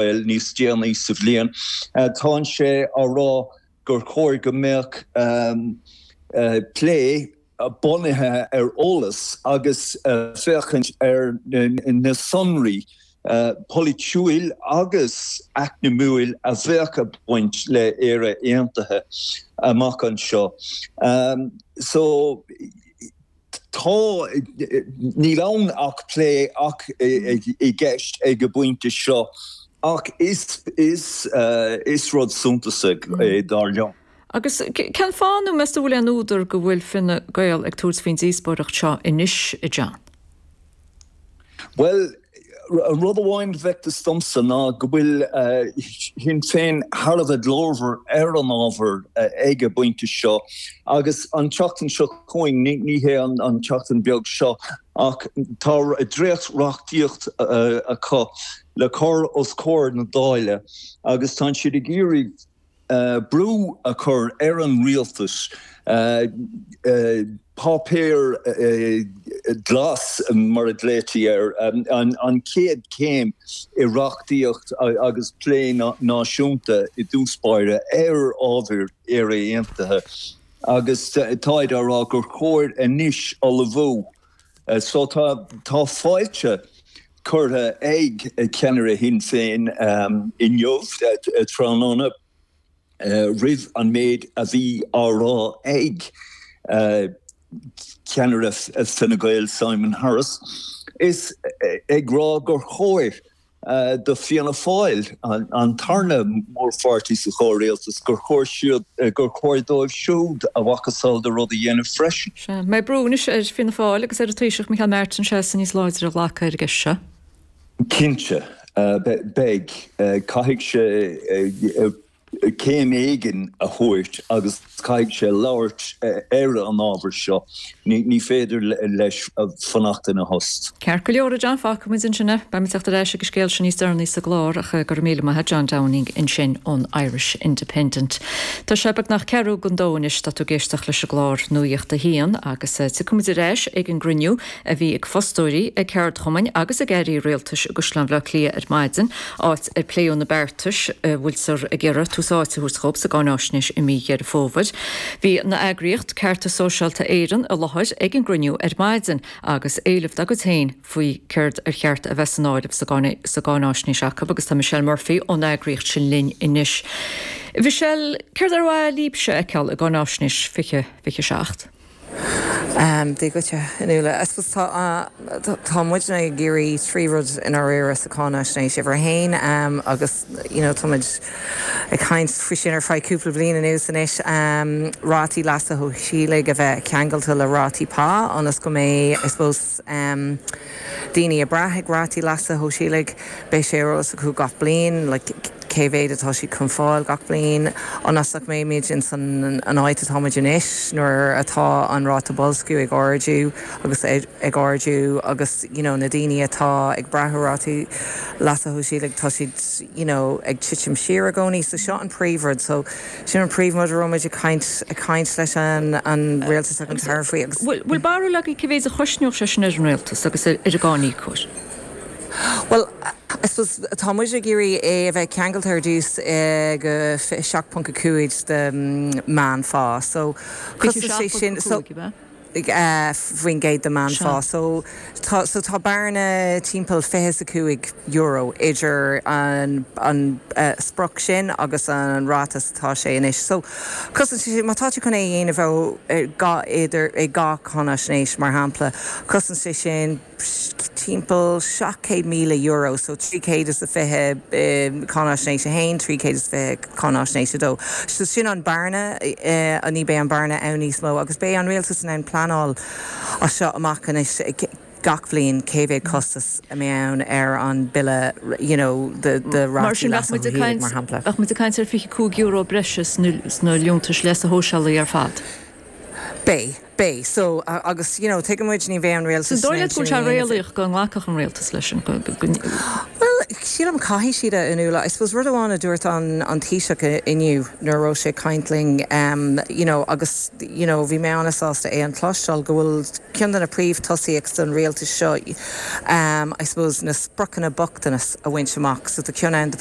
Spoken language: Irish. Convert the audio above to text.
bhfoil níos déanaí sa bhliain. Tá sé á rá gur chóir go mbeadh plé bunaithe ar eolas agus féachaint ar na sonraí polaitiúil agus eacnamaíoch a bheadh ag baint le hÉire Aontaithe amach anseo. Tá, níl ann ach plé atá i gceist ag an bpointe seo, ach is rud suntasach é, dar liom. Agus cén fáth, nó meas tú, an bhfuil aon údar go bhfuil Fine Gael ag tabhairt faoin díospóireacht seo anois, a John? Bhuel, rud amháin a bhfeictear domsa ná go bhfuil Sinn Féin thar a bheith glórmhar ar an ábhar ag an bpointe seo agus an tseachtain seo chugainn, ní hea an tseachtain bheag seo, ach tá dréacht-reachtaíocht acu le cur os comhair na Dála agus tá siad ag iarraidh. brú a chur ar an rialtas páipéar glas, mar a glaoitear air, an chéad chéim i reachtaíocht agus plé náisiúnta i dtús báire ar ábhar Éire Aontaithe, agus táid á rá gur chóir anois ullmhú So tá fáilte curtha ag ceannaire Shinn Féin inniu, tráthnóna, roimh an méid a bhí á rá ag ceannaire Fine Gael, Simon Harris, is ag rá gur chóir do Fianna Fáil an tarna mórpháirtí sa chomhrialtas, gur chóir siúd, gur chóir dóibh siúd a mhacasamhail de rud a dhéanamh freisin. Sea, mbeidh brú anois ar Fianna Fáil agus ar an Taoiseach Micheál Martin seasamh níos láidre a ghlacadh ar an gceist seo. Cinnte, beidh. Caithfidh sé céim éigin a thabhairt agus caithfidh sé labhairt ar an ábhar seo, ní féidir leis fanacht ina thost. Ceart go leor, a John, fágfaimid ansin é. Beimid ag teacht ar ais ag an scéal sin níos deireanaí sa gclár ach go raibh míle maith, a John Downing ansin ón Irish Independent. Tá sé beagnach ceathrú don dó anois, tá tú ag éisteacht leis an gclár Nuacht a hAon agus tiocfaimid ar ais ag an gcruinniú a bhí ag fostóirí, ag ceardchumainn agus ag airí rialtais i gCaisleán Bhaile Átha Cliath ar maidin, áit ar pléadh na beartais a bhfuiltear ag iarraidh tús áite a thabhairt dhóibh sa gcáináisnéis i mí Dheireadh Fómhair. Bhí an eagraíocht Cearta Sóisialta Éireann i láthair ag an gcruinniú ar maidin agus éileamh dá gcuid féin faoi céard ar cheart a bheith san áireamh sa gcáináisnéis acu agus tá Michelle Murphy ón eagraíocht sin linn anois. Michelle, céard ar mhaith leíbhse a fheiceáil i gcáináisnéis 2027? Dia dhuit, a Fhionnuala. I suppose tá, tá muidne ag iarraidh trí rud i ndáiríre sa cháinaisnéis, uimhir a haon, agus you know táimid ag caint faoi sin ar feadh cúpla bliain anuas anois, rátaí leasa shóisialaigh a bheith ceangailte le rátaí pá ionas go mbeidh I suppose, daoine ag brath ag rátaí leasa shóisialaigh. Beidh sé ar eolas acu gach bliain cé mhéad atá siad chun fáil gach bliain, ionas nach mbeimid insan áit atáimid anois, nuair atá an ráta boilsciú ag ardú agus ag ardú agus you know na daoine atá ag brath ar rátaí leasa shóisialaigh, tá siad you know ag titim siar i gcónaí. So seo an príomhrud. So. Sin an príomhrud a raibh muid ag caint leis an Rialtas ag an tAire faoi agus. Bhfuil barúil agaibh cé mhéad a chosnódh sé sin ar an Rialtas agus ar an gcáiníocóir? Bhuel, I suppose tá muid ag iarraidh é a bheith ceangailte ar dtús ag 27.5 de meánphá. So, cosnaíonn sé sin. 27.5, an ea? 5% de meánphá. Seo. So tá bearna timpeall fiche is a cúig euro idir an sprioc sin agus an ráta mar atá sé anois. So cosnaíonn sé sin, má tá tú chun é a dhéanamh thar dhá cáinaisnéis, mar shampla, cosnaíonn sé sin, timpeall €700,000 so 320 cáinaisnéis 1, 320 cáinaisnéis 2. So sin an bearna, ní beidh an bearna ann níos mó agus beidh an rialtas in ann pleanáil as seo amach anois gach bliain cé mhéad costas a mbeidh ann ar an bille you know de rátaí leasa shóisialaigh mar shampla. Bheadh muid ag caint ar €25 breise sna liúntais leasa shóisialaigh ar fad. Beidh, beidh. So, agus, you know, tuigeann muid, ní bheidh an rialtas in ann sin a dhéanamh. An dóigh leat go bhfuil sé réalaíoch go nglacfadh an rialtas leis sin, go. Bhuel, sílim, caithfidh siad, a Fhionnuala. I suppose rud amháin a dúirt an Taoiseach inniu nuair a raibh sé ag caint linn, you know, agus, you know, bhí mé an-sásta é a chloisteáil, go bhfuil ceann de na príomhthosaíochtaí an rialtais seo, I suppose, na spriocanna bochtanais a bhaint amach. So, tá ceann ann do.